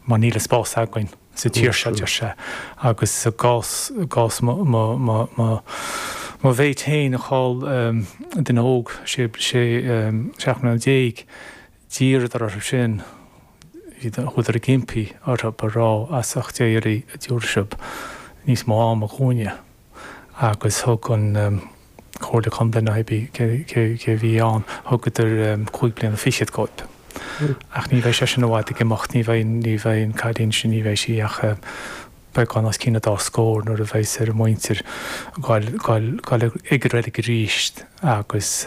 mar níl an spás againn sa tír seo, deir sé, agus i gcás mo mhéit féin, a chaill duine óg, sé, seacht mbliana déag, d'iarradar orthu sin, chuadar ag impí orthu a rá as ucht Dé oraibh an dtiúrfaidh sibh níos mó ama dhúinne agus thug an Comhairle Contae nó hé bí cé a bhí ann, thugadar cúig bliana fichead dhóibh. Ach ní bheidh sé sin i bhfad ag imeacht, ní bheidh, ní bheidh an cailín sin, ní bheidh sí ach beagán os cionn a dá scór nuair a bheas ar a muintir a ghoil ag reilig aríst agus,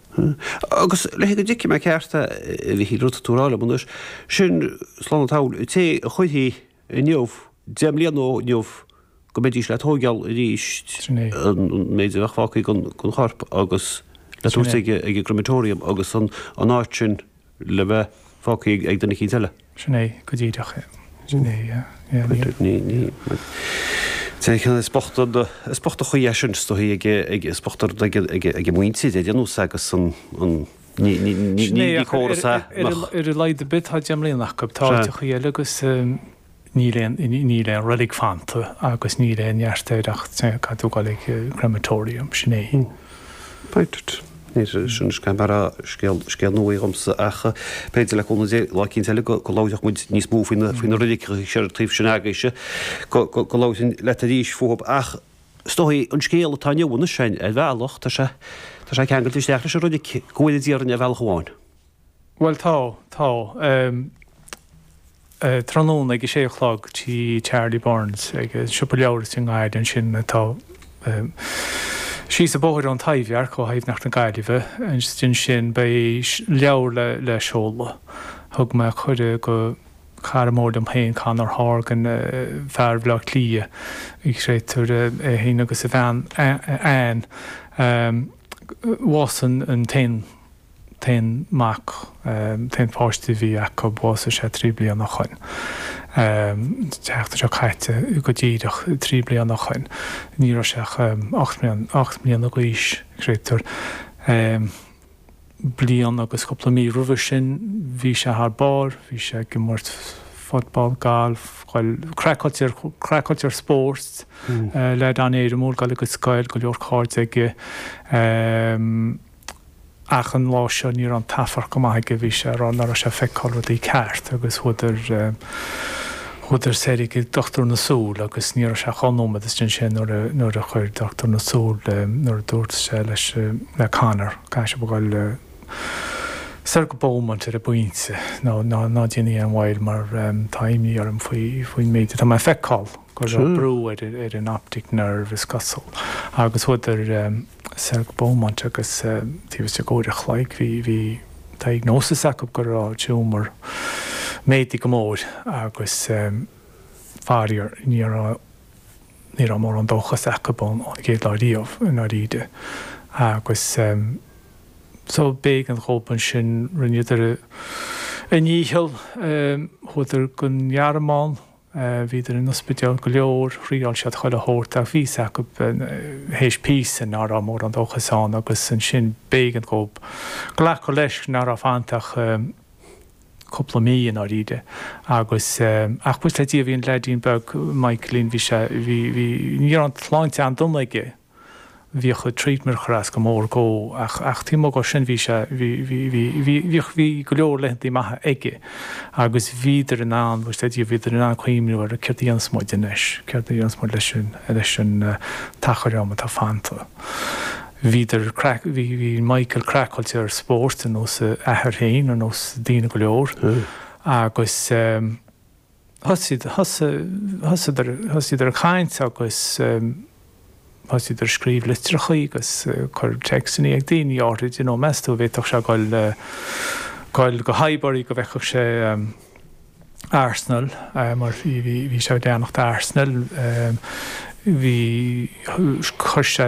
Agus le haghaidh go dtuigfidh mé ceart a Mhichíl, rud atá tú a rá liom anois, sin, slán an tsamhail, an té a chuirfí inniu, deich mbliana ó inniu, go mbeidís le tóigeáil arís, an méid a bheadh fágtha den chorp agus le tabhairt ag an gCrematorium agus an áit sin, le bheith fágtha ag duine éicint eile. Sin é, go díreach é. Sin é, yeah, yeah, níl. Is bocht an chaoi é sin, is dóichí ag, is bocht an rud ag a muintir é a dhéanamh sa agus an, ní córas é nach. Ar a laghad ar bith tá deich mbliana acu, tá áiteachaí eile agus. níl aon, níl aon reilig fanta agus níl aon neart air ach caithfidh tú a ghoil ag crematorium, sin é. Right. Sin scéal mar a déarfá scéal nua é dhomsa ach b'fhéidir le cúnamh Dé lá éicint eile go labhróidh muid níos mó faoi na reiligí ar an taobh sin agaibhse, go labhróinn leat arís fúthu ach is dóichí an scéal atá inniu anois ar bhealach tá sé ceangailte isteach leis an reilig go bhfuil idir an ar bhealach amháin. Bhuel tá, tá. Eh. tráthnóna ag a sé a chlog tí Charlie Byrne's, ag an siopa leabhar sin i nGaillimh ansin atá eh. síos an bóthar ón Taibhdhearc, ó Thaibhdhearc na Gaillimhe, agus ansin beidh leabhar le, le seoladh. Thug mé cuireadh go cara mór liom féin, Conor Horgan, fear Bhaile Átha Cliath, an créatúr, é féin agus a bhean Anne, eh. bhásaigh an, an t-aon, t-aon mac, t-aon pháiste a bhí acu, bhásaigh sé trí bliana ó shoin, an tseachtain seo caite go díreach trí bliana ó shoin, ní raibh sé ach ocht mbliana d'aois, an créatúr. Bliain agus cúpla mí roimhe sin bhí sé thar barr, bhí sé ag imirt football, galf, craiceáilte ar spóirt leaid an-éirimiúil, ag dul ag an scoil, go leor cairde aige, ach an lá seo ní raibh an t-afarc go maith aige, bhí sé ag rá ná raibh sé ag feiceáil rudaí ceart agus chuadar, chuadar soir ag dochtúir na súl agus ní raibh sé ach dhá nóiméad istigh ansin nuair a, nuair a chuir dochtúir na súl, nuair a dúirt sé leis, le Conor, caithfidh sibh a ghoil soir go Beaumont ar an bpointe, ná, ná, ná déanaigí aon mhoill mar tá imní orm faoi, faoin méid atá mé ag feiceáil, go raibh brú ar, ar an optic nerve is cosúil agus chuadar, soir go Beaumont agus taobh istigh d'uair an chloig bhí diagnosis acu go raibh tumor méadaithe go mór agus faraor ní raibh mórán dóchas acu ón gcéad lá riamh i ndáiríre agus so b'éigean dhóibh ansin rinneadar a ndícheall, chuadar don Ghearmáin Bhíodar in ospidéil go leor, thriáil siad chuile shórt ach bhí a fhios acu théis píosa ná raibh mórán dóchais ann agus ansin b'éigean dhó glacadh leis ná raibh fanta ach cúpla mí i ndáiríre agus ach buíochas le Dia bhí an leaidín beag Michaelín bhí sé bhí bhí ní raibh an tsláinte an-dona aige. bhíodh an treatment ag cur as go mór dhó ach ach taobh amuigh dho sin bhí sé, bhí, bhí, bhí, bhí, bhíodh, bhí go leor laethantaí maithe aige agus bhíodar in ann, buíochas le Dia, bhíodar in ann cuimhniú ar céard a dhéanfas muid anois, céard a dhéanfas muid leis an, leis an t-achar am atá fanta. Bhíodar, bhí, bhí Michael craiceáilte ar spórt ar nós a athar féin, ar nós daoine go leor agus, thosaíodar ag caint agus thosaíodar ag scríobh litreacha agus ag cur téacsanna ag daoine áithrid, you know, meas tú, an bhféadfadh sé ghoil go Highbury go bhfeicfeadh sé Arsenal, mar bhí sé ag leanacht Arsenal, bhí, chuir sé,